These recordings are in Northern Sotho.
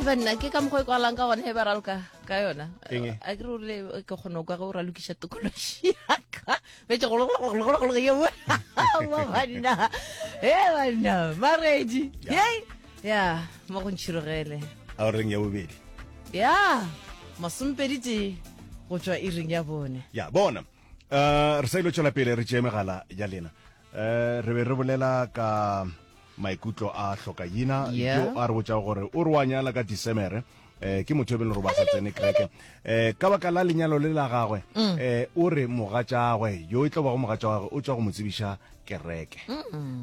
eba nna ke ka mokgwa e kwalang ka gone e ba raloka ka yona a ke role ke kgone kwa ge o ralokiša tokološi yaka betse gologologologologo ye banna e banna maredi ye ya mo go ntšhirogele a reng ya bobedi ya masompedi te go tswa e reng ya bone ya bona eh, re sa ile tswela pele re tšee megala ya lena Eh, re be re bolela ka maikutlo a hlokaina Yeah. yo a re botšago gore o re wa nyala ka disemere eh ke motho yo bele gore ba sa tsene kreke eh ka baka la lenyalo le la gagwe Mm. eh o re mogatšagwe yo e tlo bago mogatša wa gagwe o tswa go mo tsebiša kereke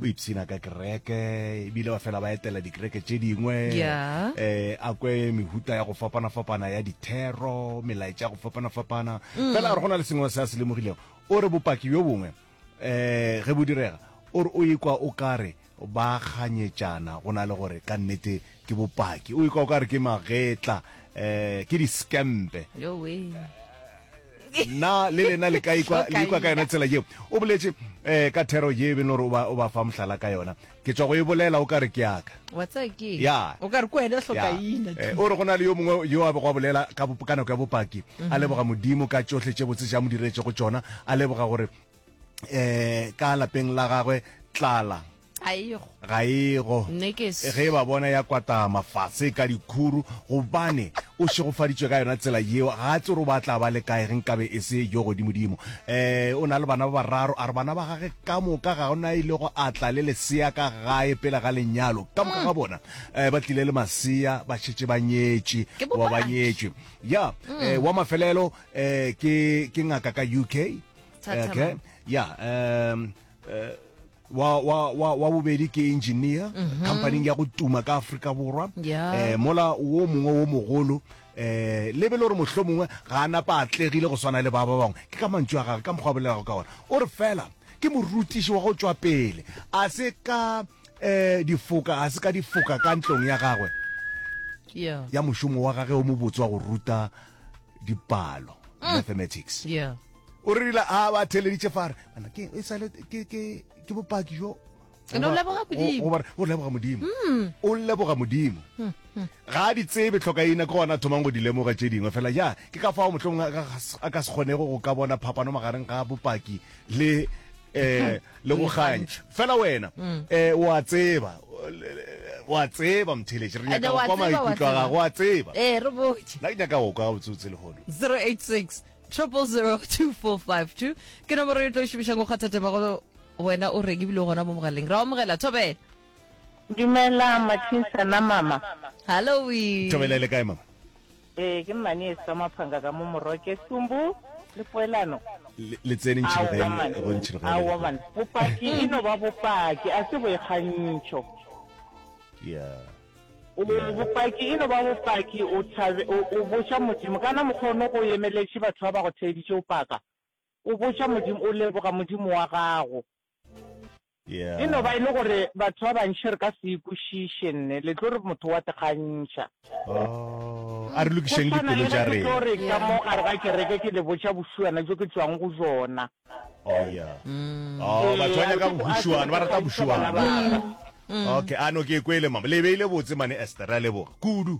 o ipshina ka kereke ebile ba fela ba etela dikereke tše dingwe Yeah. eh a kwe mehuta ya go fapana-fapana ya dithero melaetša ya go fapana-fapana Mm. fela a re go na le sengwe se a se lemogilego o re bopaki bjo bongwe um ge bo direga o re o ikwa o ka re ba kganyetšana go na le gore ka nnete ke bopaki o ikwa o ka re ke magetla um ke diskempe na le lena le ka ikwa ka yona tsela yeo o boletše um ka thero ye e beng gore o ba fa mohlala ka yona ke tswa go e bolela o ka re ke yaka wa tsaya ke ya o ka re ko wena hloka ina eh, o re go na le yo mongwe yo a bego a bolela ka ka nako ya bopaki mhm. a leboga modimo ka tsohle tše botse tša mo diretse go tsona a leboga gore eh ka lapeng la gagwe tlala ga ego ge ba bona ya kwata mafatshe ka dikhuru gobane o šegofaditswe ka yona tsela yeo ga tse gore o batla ba le kae ge nkabe e se yo godimodimo um eh, o na le bana ba bararo a re bana ba gage Ka moka ga go na a ilego a tla le lesea ka gae pele ga lenyalo. Ka moka ga bona eh, ba tlile le masea ba šetše ba nyetše Ke goba ba bopaki. nyetšwe ya eh, wa mafelelo eh, ke ke ngaka ka uk Thathama. okay. ya um, eh, wa, wa, wa, wa bobedi ke engineer companying ya go tuma ka afrika borwa Ya. eh, mola wo mongwe wo mogolo um lebe le gore mohlomongwe ga a napa a tlegile go swana le ba ba bangwe, ke ka mantšu a gagwe, ka mokgwa a bolelago ka ona. O re, Fela ke morutiši wa go tšwa pele, a se ka um difoka, a se ka difoka ka ntlong ya gagwe ya mošomo wa gage o mobotse wa go ruta dipalo, mm. mathematics. O rile a ba theleditše fa re, ke e sale ke bopaki jo And o leboga Modimo. O- o- o- o leboga modimo o leboga modimo ga a di tsebe tlhokaina ke gona a thomang go di lemoga tše dingwe fela ja ke ka fao mohlomong a ka gas- a ka se kgonego go ka bona phapano magareng ga bopaki le eh le go ganya fela wena eh wa tseba wa tseba mtheletše re And nyaka wa go kwa tseba, wa maikutlo a tseba. gago wa tseba ee re botse nna ke nyaka go kwa botsotse lehono 086 0002452 ke nomoro e tlo šomišang go kgatha temago Wena o reng ebile o gona mo mogaleng? Ra omogela, Thobela. Dumela Mathinsana mama. Halloween. Thobela e le kae mama? Ee, ke mmane esi ka maphanga ka mo moroke, sumbu le poelano. Le, le tsene ntšhirogeng, Aowa man, go ntšhirogeng le aowa lekgong. man. Bopaki e no ba bopaki, a se boikgantšho. Yeah. O, Yeah. bopaki e no ba bopaki, o thabe, o, o botša Modimo, kana mokgwa o no go emeletše batho ba ba go theeditše o paka? O botša Modimo, o leboga Modimo wa gago. E no ba e le gore batho ba bantši re ka se e kwešiše, nne le tlo re motho wa tekgantšha. Oh, a re lokišeng dipelo tša rena. Go swana le ge ke tlo re ka mo gare ga kereke ke le botša bošuana bjo ke tšwang go jona. Oh, ya. Oh, batho ba nyaka bošuana, ba rata bošuana. Okay, a no ke e kwele, mama. Le e beile botse, mane Esther. Re a leboga kudu.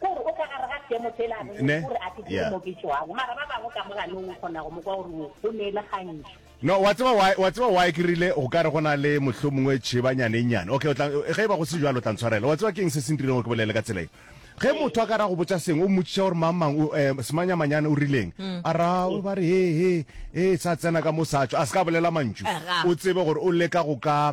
kore o tla gare ga seemo se le anone gore a ke ke mo ke tšwago mara ba bangwe ka moganong o kgona go mo kwa gore o ne e le gantši no wa tseba why wa tseba why ke rile go ka re go na le mohlho mongwe tšhebanyane nyane okay o tla ge e ba go se jalo o tla ntshwarela wa tseba ke eng se se ntirileng go ke bolele ka tsela e ge motho a ka ra go botsa seng o mmotsiša gore mang mang eh, semanyamanyane o rileng mm. a ra o ba re he he e sa tsena ka mo satso a se ka bolela mantšu eh, o tsebe gore o leka go ka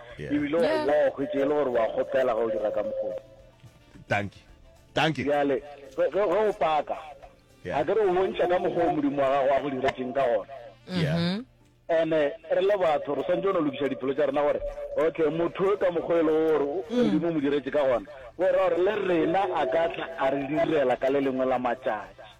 Yeah. ebile o Yeah. boa o hwetše e le gore wa kgopela ge o dira ka mokgone Thank you. Thank you. bjale ge ge- ge o paka Yeah. a ke re o bontšha ka mokgwa o modimo wa gago a go diretseng ka gona Yeah. Mhm. ene re le batho re swantse o no lokiša diphelo tša rena gore okay motho yo ka mokgwa e le gore o- modimo o mo diretse ka gona o ra gore le rena a ka tla a re direla ka le lengwe la matšatši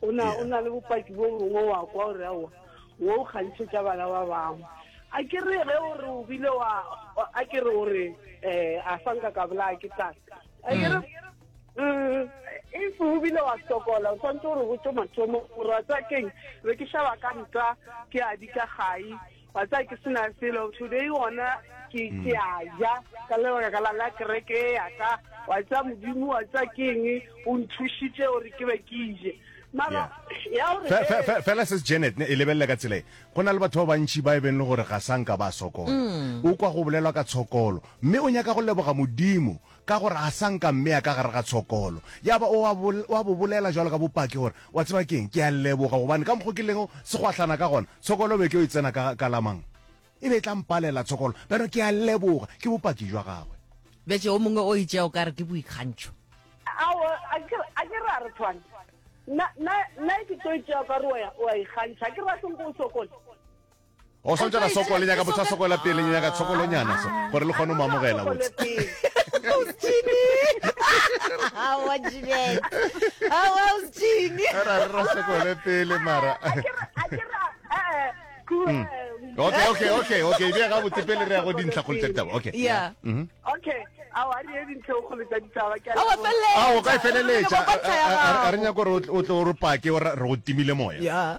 o na o na le bopaki bo bongwe wa kwa o re aowa wo o kgantšhetša bana ba bangwe a ke re ge o re o bile wa a ke re o re um a fa nka ka bolaya ke tlang a ke re um if o bile wa sokola o tshwanetse gore botse mathomo gore wa tsa keng be ke šaba ka nta ke a di ka gai Wa tsaya ke sena selo today gona ke ke a ja ka le ka la la kereke ya ka wa tsaya modimo wa tsaya ke eng o nthushitse o re ke be ke ije mara ya o re fela se Janet ne e lebelle ka tsela e go na le batho ba bantši ba e beng le gore ga sanka ba sokola o kwa go bolelwa ka tshokolo mme o nyaka go leboga modimo Ka gore a sa nka mmea ka gare ga tshokolo, ya ba o a bo, o a bo bolela bjalo ka bopaki gore, Wa tseba ke'ng? Ke a leboga, gobane ka mokgo ke lego segwahlana ka gona, tshokolo e be e tlo e tsena ka, ka la mang? E be e tla mpalela tshokolo. Bjalo ke a leboga, ke bopaki bja gagwe. Bjatše yo mongwe o itše o ka re ke boikgantšho. Aowa, akere, akere a re tshwane. Nna, nna, nna ke tlo itše o ka re o a, o a ikgantšha. Akere ba se nko o sokole. o swantse ka soko le nyaka botsa soko la pele le nyaka soko lo nyana so gore le kgone o mamogela botsa Hawa Jeanette. Hawa usithini? Era re rasa kole pele mara. Mm. Okay, okay, okay, okay. Dia ga botse pele re ya go dintlha go letsatsi taba. Okay. Yeah. Mhm. Okay. Awa re ye dintlha go letsatsi taba ke. Awa felle. Awa ka feleletsa. A re nya go re o tlo re pake o re go timile moya. Yeah.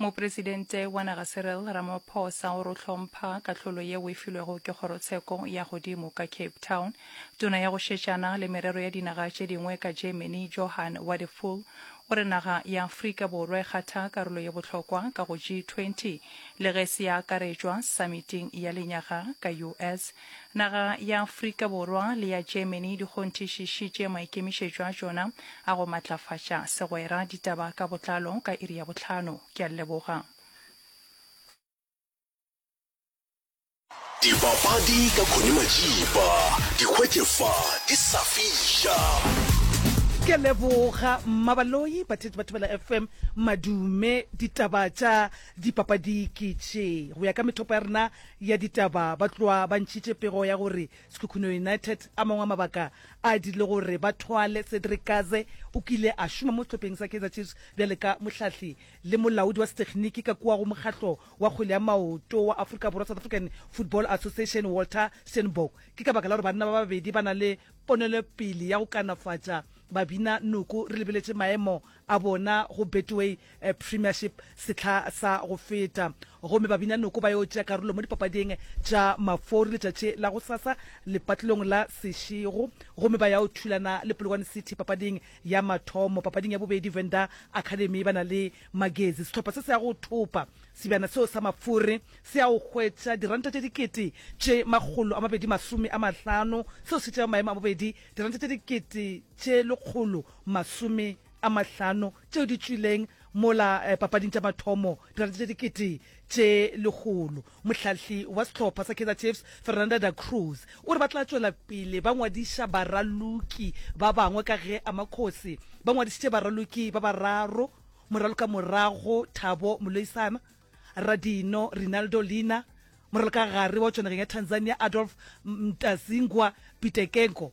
Mopresidente wa naga Cyril Ramaphosa o re o hlompha kahlolo yeo e filwego ke kgorotsheko ya godimo ka Cape Town. Tona ya go šetšana le merero ya dinaga tše dingwe ka Germany, Johann Wadephul, o re naga ya Afrika Borwa e kgatha karolo ye bohlokwa ka go G20 le ge se ya akaretšwa samiting ya lenyaga ka US. Naga ya Afrika Borwa le ya Germany di kgonthišišitše maikemišetšo a tšona a go matlafatša segwera. Ditaba ka botlalo ka iri ya bohlano. Ke a leboga. Dipapadi ka Connie Majipa. Di hwetše fa, di sa fiša. Ke a leboga Mmabaloi, batheetši ba Thobela FM, madume. Ditaba tša dipapadi ke tše, go ya ka methopo ya rena, ya ditaba ba tloa ba ntšhitše pego ya gore Sekhukhune United. A mangwe a mabaka a dirile gore ba thwale Cedric Kaze. O kile a šoma mo sehlopheng sa Kaizer Chiefs bjale ka mohlahli le molaodi wa sethekniki ka kua go mokgatlo wa kgwele ya maoto wa Afrika Borwa, South African Football Association, Walter Steenbok. Ke ka baka la gore banna ba babedi ba na le ponelopele ya go kanafatša babina noko re lebeletše maemo a bona go Betway Premiership sehla sa go feta gomme Babinyanoko ba yo tšea karolo mo dipapading tša Mafori letšatši la gosasa lepatlelong la Seshego gomme ba ya o thulana le Polokwane City papading ya mathomo. Papading ya bobedi Venda Academy ba na le Magezi. Sehlopha se se ya go thopa sebjana seo sa Mafori se ya go hwetša diranta tše dikete tše makgolo a mabedi masome a mahlano seo se tšeago maemo a bobedi diranta tše dikete tše lekgolo masome a mahlano tšeo di tšwileng mola eh, papading tša mathomo dirate tša dikete tše lekgolo mohlahli wa sehlopha sa kaizer chiefs fernanda da cruz o re ba tla tšwela pele ba ngwadiša baraloki ba bangwe ka ge amakgosi ba ngwadišitše baraloki ba bararo moraloka morago thabo moloisana radino rinaldo lina moraloka gare wa tšwanageng ya tanzania adolf mtazingwa pitekenko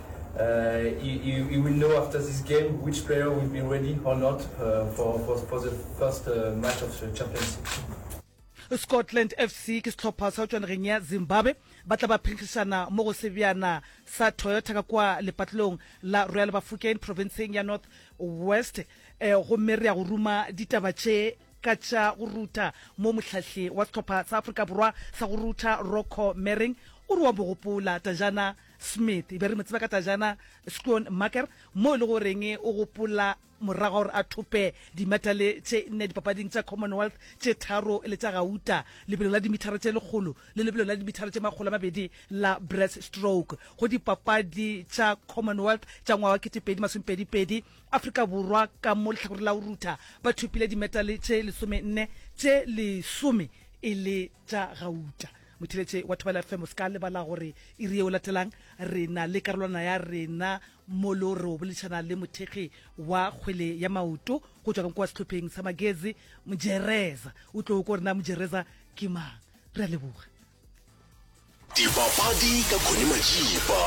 Uh, you, you, you will know after this game which player will be ready or not uh, for, for, for the first uh, match of the Champions League. Scotland FC ke setlhopha sa tšwanegeng ya Zimbabwe ba tla ba phenkgišana mo go sebjana sa Toyota ka kwa lepatlelong la Royal Bafokeng provinceng ya North West eh, gomme re ya go ruma ditaba tše ka tša go ruta mo mohlahli wa setlhopha sa Afrika Borwa sa go ruta Rocco Mering o re wa bogopola tajana Smith, e be re mo tseba ka Tajana Schoonmaker, moo e le goreng o gopola morago gore a thope dimetale tše nne dipapading tša Commonwealth tše tharo le tša gauta, lebelo la dimithara tše lekgolo le lebelo la dimithara tše makgolo a mabedi la breaststroke. Go Dipapadi tša Commonwealth tša ngwaga wa kete pedi masome pedi pedi, Afrika Borwa ka mo lehlakoreng la go rutha ba thopile dimetale tše lesome nne, tše lesome e le tša gauta. Motheletše wa Thobela FM, o se ka lebala gore iri ye o latelang re na le karolwana ya rena molo re o boledišana le mothekgi wa kgwele ya maoto go tšwa kwa sehlopheng sa magezi mojereza o tlo ko rena mojereza ke mang re a leboga dipapadi ka khone majiba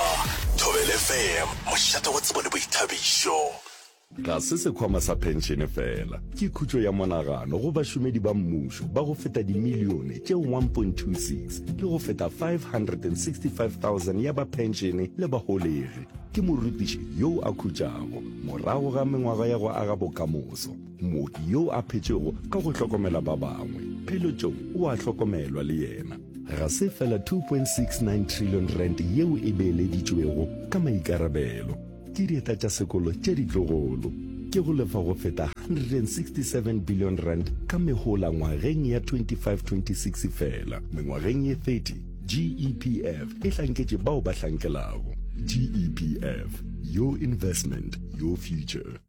thobelefm mošate wa tsebo le boithabišo Ga se sekhwama sa phenšene fela, ke khutšo ya monagano go bašomedi ba mmušo ba go feta dimilione tše 1.26 le go feta 565,000 ya ba phenšene le baholegi. Ke morutiši yoo a khutšago morago ga mengwaga ya go aga bokamoso, mooki yoo a phetšego ka go hlokomela ba bangwe. Pheletšong o a hlokomelwa le yena. Ga se fela R2.69 trillion yeo e beeleditšwego ka maikarabelo, Ke dieta tša sekolo tše ditlogolo. Ke go lefa go feta R167 billion ka mehola ngwageng ya 25-26 fela. Mengwageng ye 30, GEPF e hlanketše bao ba hlankelago. GEPF, your investment, your future.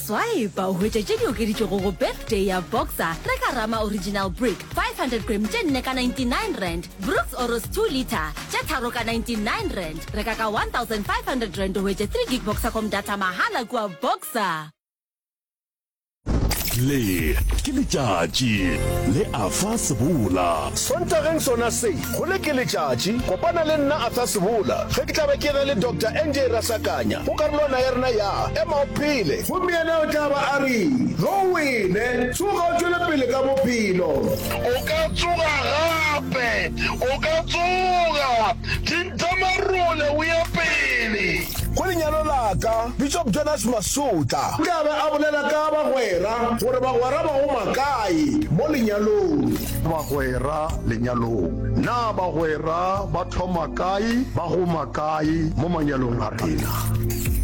Swipe o hwetše tše di okeditšwego go Birthday ya Boxer, reka Rama Original Brick 500 gram tše nne ka 99 rand, Brooks Oros 2 litre tše tharo ka 99 rand. Reka ka 1500 rand o hwetše 3 gig Boxercom data mahala kua Boxer. Le ke letšatši le a fa sebola. Sontageng sona se Gole ke letšatši, kopana le nna Athasebola ge ke tla be ke ena le Doctor NJ Rasakanya go karolwana ya rena ya Ema o Phele! Gomme yena o tla ba a re, Ge o wele, tsoga o tšwele pele ka bophelo. O ka tsoga gape. O ka tsoga. Thintha marole o ye pele. Go lenyalo la ka, Bishop Jonas Masutla. O tla be a bolela ka bagwera, gore bagwera ba go makae mo lenyalong. Bagwera Lenyalong. Na bagwera ba thoma kae, ba goma kae mo manyalong a rena?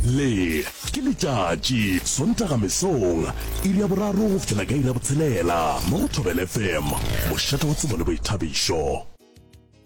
Le ke letšatši, Sontaga mesong, iri ya boraro go fihlela ka iri ya botshelela mo go Thobela FM, mošate wa tsebo le boithabišo.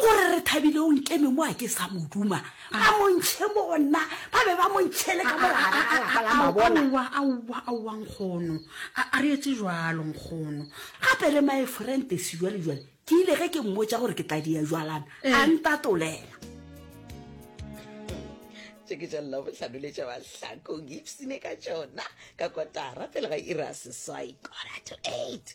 O re, Re thabile o nkeme mo a ke sa mo duma. A mo ntšhe mo go nna. Ba be ba mo ntšhele ka molagare ga lapa la mabona. Aowa, aowa, aowa, nkgono. A, a re etse jalo, nkgono. Gape le my friend Tesi jwale, jwale, ke ile ge ke mmotša gore ke tla dia jwalana, a ntatolela. Tše ke tša Labohlano le tša Mahlakong, ipsine ka tšona ka kotara pele ga iri ya seswai, quarter to eight.